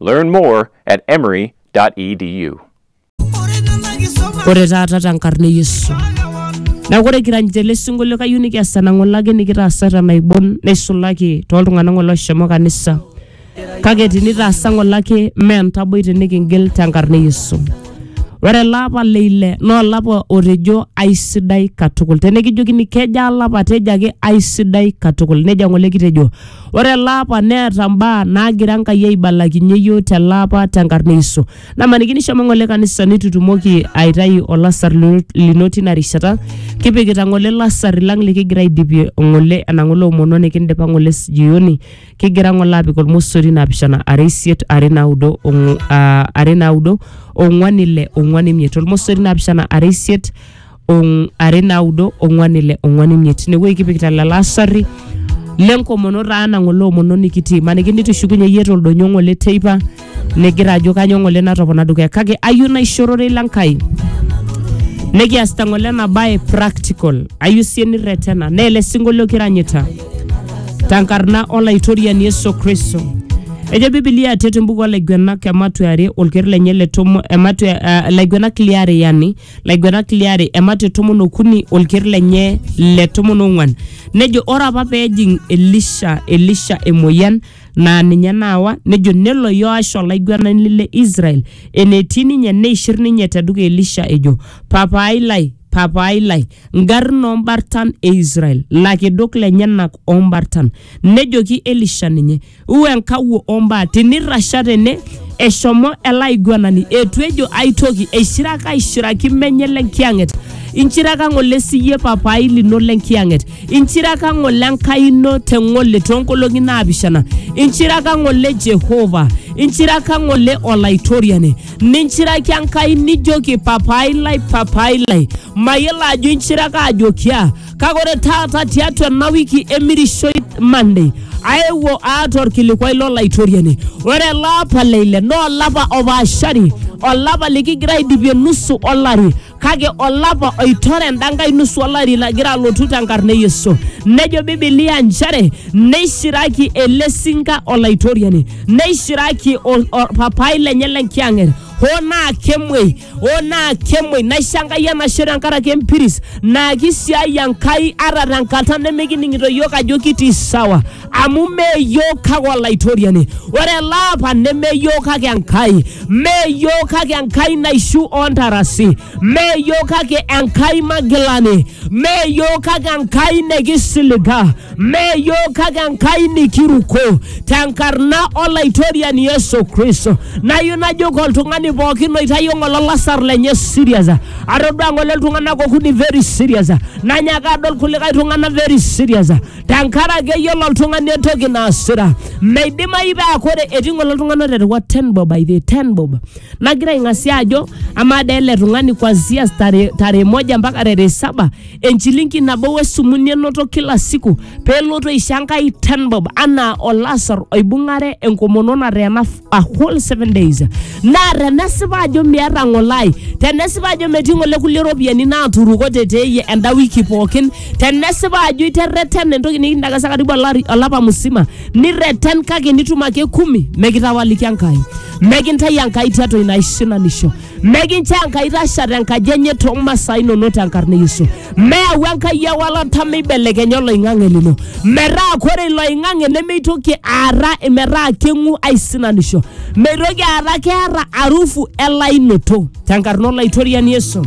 Learn more at emory.edu. ore taata tenkarna e yesu neeku ore kiranyita ele sinkolio kayieu nikias enang'olaki nikitaasa tenaibon neisulaki tooltung'anak ng'ole oshomo kanisa kake tinitaasa ng'olaki mee entaboi tinikingil tenkarna e yesu ore ele apa le ile naa olapa otejo aisidai katukul tenikijokini kejaa alapa tejo ake aisidai katukul nejia ng'ole kitejo Ore ele apa neeta mbaa naagira Enkai aibalakinye iyiook tele apa tenkarna e Yesu. Namaniki nishomo ng'ole kanisa nitu itumoki aitayu olasar lino- lino tina rishata, kipikita ng'ole lasar lang likigira aidipie ng'ole ena ng'ole omono nikindipa ng'ole jioni, kigira ng'ole apik olmosori naapishana are isiet are naudo ong'u- ah, are naudo ong'uan ile ong'uan imiet. Olmosori naapishana are isiet ong- are naudo ong'uan ile ong'uan imiet inewueji kipikita lelo asarri lenkomono taa nang'ole omono nikitii maniki nitushukunye iyie toldonyo ng'ole teipa nigira ajo kanyo ng'ole natopona dukuya kake ayieu naishorore ila nkai nikiasita ng'ole ena bae practical ayieu sie nirretena naa ele sinkolio kiranyita tenkarna olaitoriani Yesu Kristo. Ejo Biblia atet embuku olaiguenak ematua are olker lenye le tomo ematua uh, laiguenak liare yani laigwenak liare emate tomon okuni olker lenye le tomon ong'uan nejo ore apa peejing elisha elisha emoyian naa ninye naawa nejo nelo yoash olaigwenani le israel enetii ninye neishir ninye tedukuya elisha ejo papaai lai papaai lai ngarrin ombartan e israel lakedok lenyenak ombartan nejoki elisha ninye u enkawuo ombaa tinirrasha tene eshomo ele aiguanani etu ejo ai toki eishiraka aishiraki menye le nkiyang'et inchiraka ng'ole siyie papai lino le nkiyang'et inchiraka ng'ole enkai ino te ng'ole toonkolong'i naapishana inchiraka ng'ole jehova inchiraka ng'ole olaitoriani ninchiraki enkai nijoki papai lai papai lai mayiolo ajo inchiraka ajoki aa kake ore taata tiatua ena wiki emirishoi Monday aewuo aata orkilikwai lolaitoriani ore ele apa le ile naa olapa opaashari olapa likigira aidipie nusu olari kake olapa oitore enda nkae nusu olari lagira alotu tenkarna e Yesu nejo Biblia nchere neishiraki ele sinka olaitoriani neishiraki ol- orpapai lenye lenkiyang'et hoo naa kemuei o naa kemoi naisho enkai enashe tenkaraki empiris naa kisiai enkai ata tenkata nemikining'ito yiok ajo kitii sawa amu mee yiok kake olaitoriani ore ele apa neme yiok kake enkai mee yiok kake enkai naishu ontarasi mee yiok kake enkai magilani mee yiok kake enkai nekisiliga Mme iyiook kake Enkai nikiruko tenkarna Olaitoriani Yesu Kristo. Nayieu najoki oltung'ani pookin oitayio ng'ole olasar lenye serious. Atodua ng'ole iltung'anak okuni very serious. Nanyaaka adol kulikae tung'anak very serious. Tenkaraki eyiolo oltung'ani entoki naasita. Meidimayu paa kore etii ng'ole iltung'anak oterewa ten bob by the way, ten bob. Nagira aing'asia ajo amaa dee ele tung'ani kuanzia tarehe moja mpaka tarehe saba enchilingi nabo wesumuni enoto kila siku pelotu aisho enkai ten bob anaa olasar oibung'are enkomono nateena f- a whole seven days naa tenesipa ajo miata ng'olai tenesipa ajo metii ng'ole kulie ropiyiani naaturukote teeyie enda wiki pookin tenesipa ajo iterreten entoki nikindakasa karibu olari- olapa musima nirreten kake nitum ake kumi mekitawaliki enkai mekintai enkai tiatua ina aisinanisho Mekincho Enkai itasha tenkaji enye too masaa inonok tenkarna e Yesu. Meyau Enkai ewalata meibelekenya oloing'ang'e lino. Metaa kore ilo oing'ang'e nemeitoki aara metaa keng'u aisinanisho. Meitoki aara keeta arufu elainoto tenkarna olaitoriani Yesu.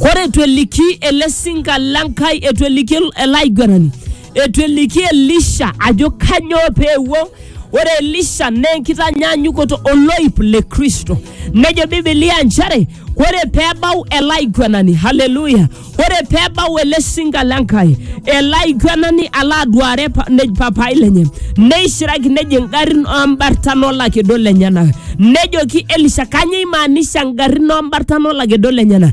Kore etu eliki ele sinka le Nkai, etu eliki ele aiguanani Eitu eliki Elisha ajo kanyoo pee ewuo. Ore Elisha naa enkitanyaanyukoto oloip le Kristo. Nejo Biblia nchere ore pee ebau ele aiguanani, haleluya, ore pee ebau ele sinka le Nkai, ele aiguanani alo aduare pa- ne- papai lenye, neishiraki nejo ingarrin oo mbartan o lakedo lenyenak. Nejoki Elisha kanyoo eimaanisha ingarrin o mbartan o lakedo lenyenak.